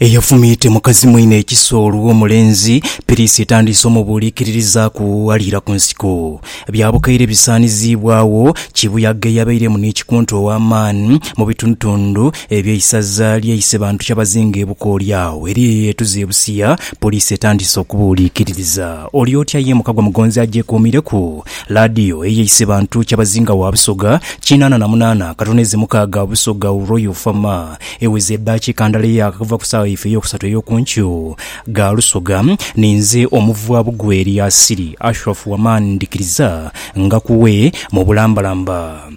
eyafumiite mukazi mwine ekiso olw'omulenzi, piriisi etandiise omubuuliikiririza ku aliira ku nsiko. Bya bukaire bisaaniziibwagho kibuyaga eyabairemu ni kikunta ow'amaani mu bitundutundu eby'eisaza lye Isebantu Kyabazinga e Bukooli agho eriyo eyeetuze e Busia, poliisi etandiise okubuuliikiririza. Oli otya ye Mukagwa Mugonzi agyekuumire ku laadiyo eye Isebantu Kyabazinga wa Busoga kinaana na munaana, katono eze mukaaga Busoga Royal Fa Ma. Eweze eddakiika ndala eyaaka okuva ku saawa yaife ey'okusatu ey'oku nkyo gha Lusoga, ninze omuvwa bugwe Eliasili Ashraf Wamani ndhikiriza nga ku we mu bulambalamba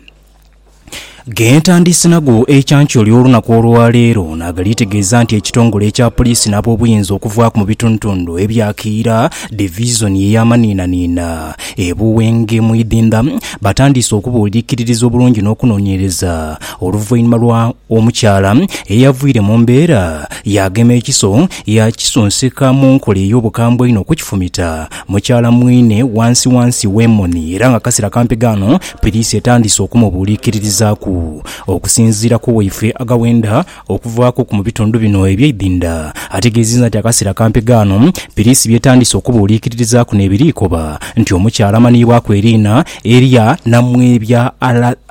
ghe ntandiise nago ekyankyoli olunaku olwa leero nagali tegeeza nti ekitongole ekya Poliisi n'abobuyinza okuvaaku mu bitundutundu ebya Kiira Divizoni eya Maniinaniina e Buwenge mu Idhindha batandiise okubuulikiririza obulungi n'okunonyereza Oluvainhuma lwa omukyala eyavwire mu mbeera yaagema ekiso yaakisunsika mu nkola ey'obukambwe einho okukifumita mukyala mwine wansi wansi w'emoni era nga kasira kampi ghano piriisi etandise okumubuuliikirirzaku. Okusinziira ku waifle Agawenda okuvaaku ku mu bitundu bino eby'eidhinda ategeeziza nti akasira kampi ghano piriisi byetandise okubuuliikirirzaku n'ebiriikoba nti omukyala amanhiibwaku eriina erya Namwebya Allan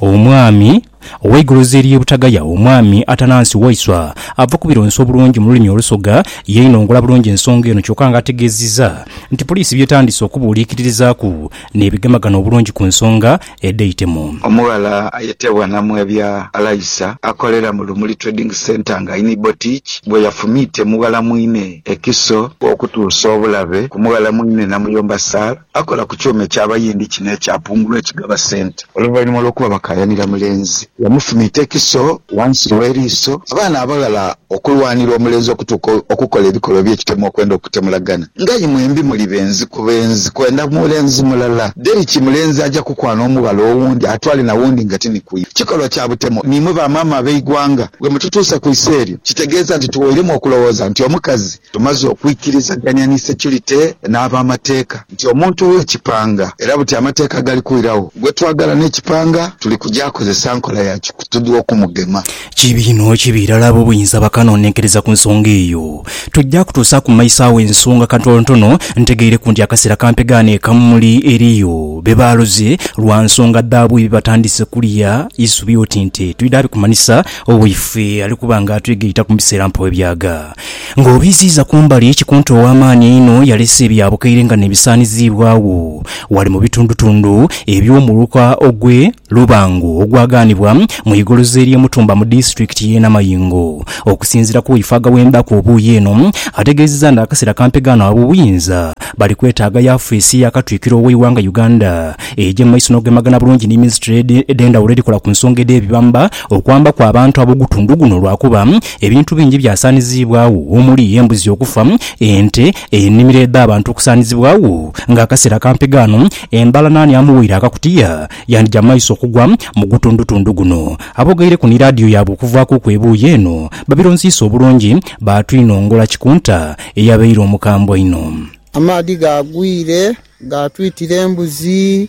Omwami, Oweigulu Ziriye Butagaya Omwami Atanansi Waiswa ava kubironsa obulungi mululimi olusoga yainongola bulungi ensonga eno kyoka nga ategeziza nti poliisi byetandise okubuuliikiririzaaku nebigemagana obulungi kunsonga edhaitemu. Omughala ayetebwa Namwebya Alaisa akolera mu Lumuli Trading Centre nga ni Botiki bweyafumiite mughala mwine ekiso, okutuusa obulabe ku mughala mwine namuyomba Sir. Akola ku kyuma eky'Abayindi kino ekya Pungulu ekigaba ssente. Oluvanhuma lw'okuba bakaayanira mulenzi, yamufumiita ekiso ghansi w'eriiso. Abaana abaghala okulwanira omulenzi okutuuka okukola ebikolwa eby'ekitemo okwenda okutemulagana nga aye mwembi muli benzi ku benzi kwenda mulenzi mulala. Deriki mulenzi aja kukwana omughala owundi atwale na wundi nga ti ni ku iwe. Kikolwa kya butemo ni imwe ba maama ab'eighwanga bwe mututuusa ku iso eryo. Kitegeeza nti tuwoiremu okulowooza nti omukazi Tumaze okwikirizagania ni securite n'abamateeka nti omuntu w'ekipanga era buti amateeka gali kwiragho gwetwagala n'ekipanga tuli kugyakozesa nkola ya kikutudhwa okumugema. Kibi inho kibi irala ab'obuyinza bakanonenkereza ku nsonga eyo. Tujja kutuusa ku maiso agho ensonga kantonontono ntegeireku nti akaseera kampe ghano e Kamuli eriyo be baaloze lwa nsonga dhaabwe bye batandise kulya isubi oti nti twidha bikumanhisa owo ife ali kuba nga atwegaita ku biseera mpooebyaga. Ng'obiziiza ku mbali, Kikunta ow'amaani einho yalese ebya bukaire nga n'ebisaaniziibwagho ghale mu bitundutundu eby'omuluka ogw'e Lubango ogwagaanibwa mu igoloza ery'e Mutumba mu disitulikiti y'e Namayingo. Okusinziira ku waifaga w'embaku obuuyi eno, ategeezezza nti akaseera kampega ghano ab'obuyinza bali kwetaaga yafeesi ya Katwikiro w'eighanga Uganda egye mu maiso n'okugemagana bulungi ni minisitule edh'endhawulo edhikola ku nsonga edh'ebibamba okwambaku abantu ab'ogutundu guno lwakuba Ebintu bingi byasaaniziibwagho omuli embuzi okufa, ente, enimiro edh'abantu okusaanizibwagho. Nga akaseera kampi ghano, embala naani amuwaire akakutiya yandija maiso okugwa mu gutundutundu guno. Abogeireku ni laadiyo yaabwe okuvaakuku ebuuyi eno babironsiisa obulungi baatwinongola Kikunta eyabaire omukambwe einho. Amaadhi gaagwire gaatwitira embuzi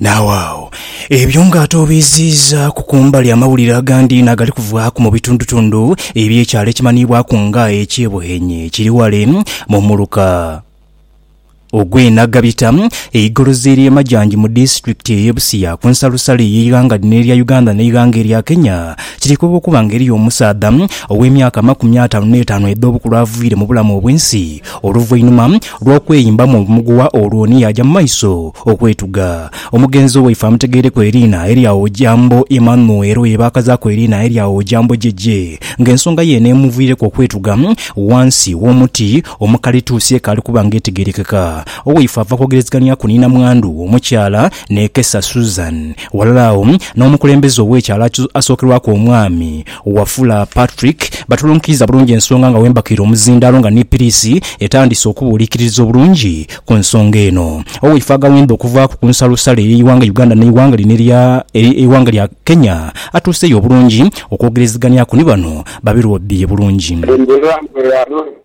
Naawe agho ebyo nga ate obiiziizaaku ku mbali amawulire agandi inho agali kuvaaku mu bitundutundu eby'ekyalo ekimanhiibwaku nga eky'e Buhenye ekiri ghale mu muluka ogw'e Nagabita, eigolozi ery'e Majanji mu disitulikiti ey'e Busia ku nsalosalo ey'eighanga lino erya Uganda n'eighanga erya Kenya, kiteekebwa okuba nga eriyo omusaadha ow'emyaka amakumi ataanu n'etaanu edh'obukulu aviire mu bulamu obw'ensi oluvainhuma Lwa kweyimbamu obumuguwa olwo ni yaaja mu maiso okwetuga. Omugenzi owaife amutegeireku eriina erya Ojambo Emmanuel ye baakazaaku eriina erya Ojambo Jeje ng'ensonga ye eno emuviireku okwetuga ghansi w'omuti omukalituusi ekaali kuba ng'etegerekeka. Owaife ava kwogerezegania ku ni namwandu omukyala Nekesa Susan. Ghalala agho n'omukulembeze ow'ekyalo asookerwaku omwami Wafula Patrick, Batulunkiiza bulungi ensonga nga wembakaire omuzindaalo nga ni piriisi etandiise okubuuliikiririza obulungi ku nsonga eno. Oweifwe agawenda okuvaaku ku nsalosalo ey'eighanga Uganda n'eighanga lino erya eighanga lya Kenya atuuseeyo bulungi okwogereziganiaku ni bano babe lwobibye bulungi. Endherwa bwe yalonda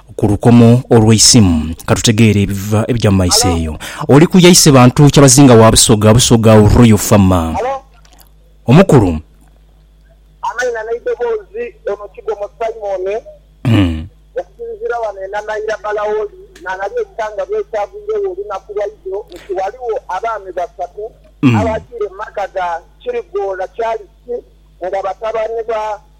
Ku lukomo olweisimu, katutegeere ebiva ebija mu maiso eyo. Oli ku yaise bantu kyabazinga wa Busoga, Busoga u Royal Farmer. Halo. Omukulu. Amaina n'eidoboozi, ono Kigomo Simon. Hmm. Okusinziira wano e Nanaira Balaoli n'aghali ekikangabwa ekyagwiregho olunaku lwaidho nti ghaligho abaami basatu abaagiire mu maka ga Kirigoola Charles nga batabani ba.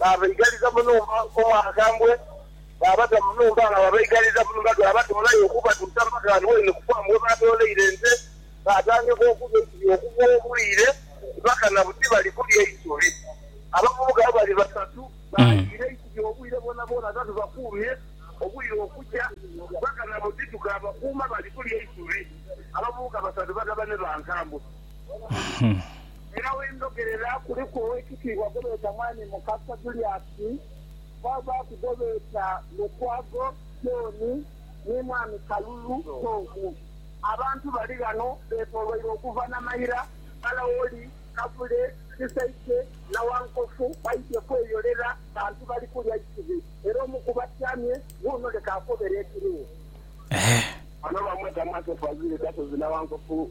Baabaigaliza mu nhumba omwakambwe, baabata mu nhumba nga babaigaliza mu nhumba dhaabatoolayo okubatuusa mpaka ghano waidhino ku faamu we baatooleire ente. Baatandika okulya eisubi okuva obwire mpaka na buti bali kulya isubi. Abavubuka abo bali basatu, baaliira eisubi obwire bwonabwona nga tubakuumye obwire okukya mpaka na buti tukaabakuuma bali kulya isubi. Abavubuka basatu batabane ba Nkambwe. Era we ndhogerera kuliku ow'ekitiibwa gwe beeta Mwami Mukasa Juliasi, kwabaaku gwe beeta Lukwago John ni Mwami Kalulu Tom. Abantu bali ghano beetooloirwe okuva Namayira, Kalawoli, Kavule, Kisaikye, Nawankofu baidhye kweyolera bantu bali kulya isubi. Era omu ku batyamye wuuno leka akobere ekiriwo. Bano bamweta Mwatoofu Azwire Gasozi Nawankofu.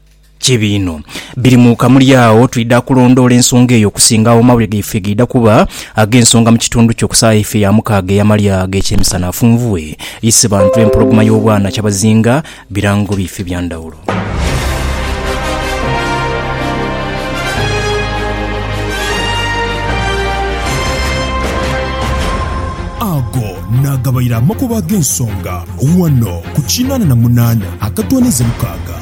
Kibi inho. Biri mu kamuli agho twidha kulondoola ensonga eyo okusinga agho amawulire gaife gaidha kuba ag'ensonga mu kitundu kyo ku saha yaife ya mukaaga ey'amalya ag'ekyemisana. Afunvue isi bantu empologoma y'obwana kyabazinga birango biife bya ndhawulo. Ago naagabaire amakubo ag'ensonga ghano ku kinaana na munaana akatoonheze mukaaga.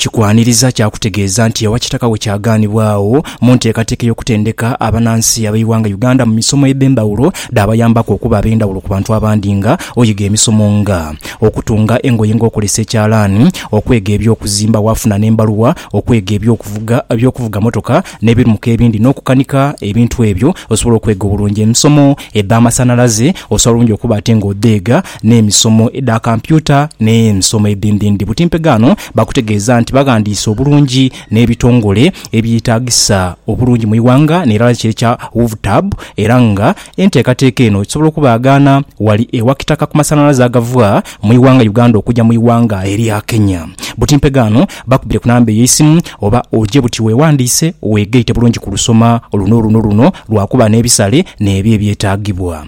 Kikwaniriza kya kutegeeza nti ewa Kitaka we kyagaanibwa agho mu nteekateeka ey'okutendeka abanansi ab'eighanga Uganda mu misomo edh'endhawulo dhaabayambaku okuba ab'endhawulo ku bantu abandi nga oyiga emisomo nga, okutunga engoye ng'okozesa ekyalaani, okwega eby'okuzimba waafuna n'embaluwa, okwega eby'okuvuga eby'okuvuga motoka n'ebirmuka ebindi n'okukanika ebintu ebyo osobola okwega obulungi emisomo edh'amasanalaze osobola bulungi okuba ate ng'odheega n'emisomo edha kampyuta n'emisomo edhindhindhi. Buti mpegaano baakutegeeza nti baghandiise obulungi n'ebitongole ebyetaagisa obulungi mu ighanga n'erala kye kya UVTAB era nga enteekateeka eno esobola okubaagaana wali ewa kitaka ku masanhalaze agava mu ighanga Uganda okuja mu ighanga erya Kenya. Buti mpegaano bakubire ku namba ey'eisimu oba oje buti wewandiise weegaite bulungi ku lusoma luno luno luno lwakuba n'ebisale n'ebyo ebyetaagibwa.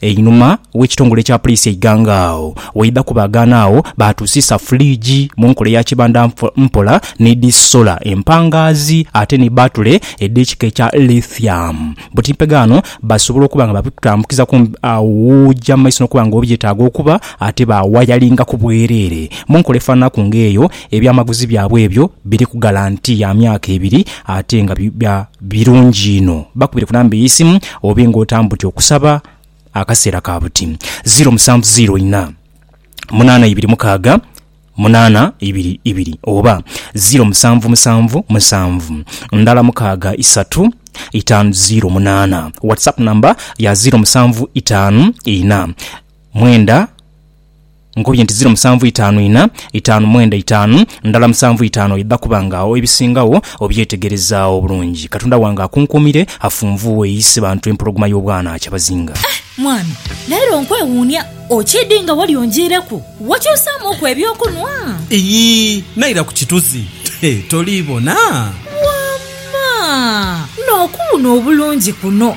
Einhuma w'ekitongole kya Puliisi e Iganga agho waidha kubaagaana agho baatuusisa fuliigi mu nkola eya kibanda mpola ni dhi sola empangaazi ate ni bbaatule edh'ekika ekya Lithium. Butimpe ghano basobola okuba nga babikutambukizaku aw'oja mu maiso n'okuba nga obyetaaga okuba ate baawayalingaku bwereere mu nkola efaananaku ng'eyo Ebyamaguzi byabwe ebyo biriku galanti ya myaka ebiri ate nga biba birungi inho. Bakubire ku namba ey'eisimu obe ng'otambudde okusaba akaseera ka buti. Ziiro musanvu ziiro inha, munaana ibiri mukaaga, munaana ibiri ibiri oba ziiro musanvu musanvu musanvu, ndhala mukaaga isatu, itaanu ziiro munaana. WhatsApp namba ya ziiro musanvu itaanu inha, mwenda. Nkubye nti ziro musanvu itaanu ina, itaanu mwenda itaanu, ndala musanvu itaanu oidha kuba nga agho ebisingagho obyetegerezaagho bulungi. Katonda wange akunkuumire, afunvuughe eisi bantu empologoma y'obwana kyabazinga. Eh mwami, leero nkwewuunia. Okiidhi nga wali onjiireku? Wakyusaamuuku eby'okunwa? Iyii, naira ku kituzi. He, toli bona? Wamma! N'okuwuuna obulungi kuno!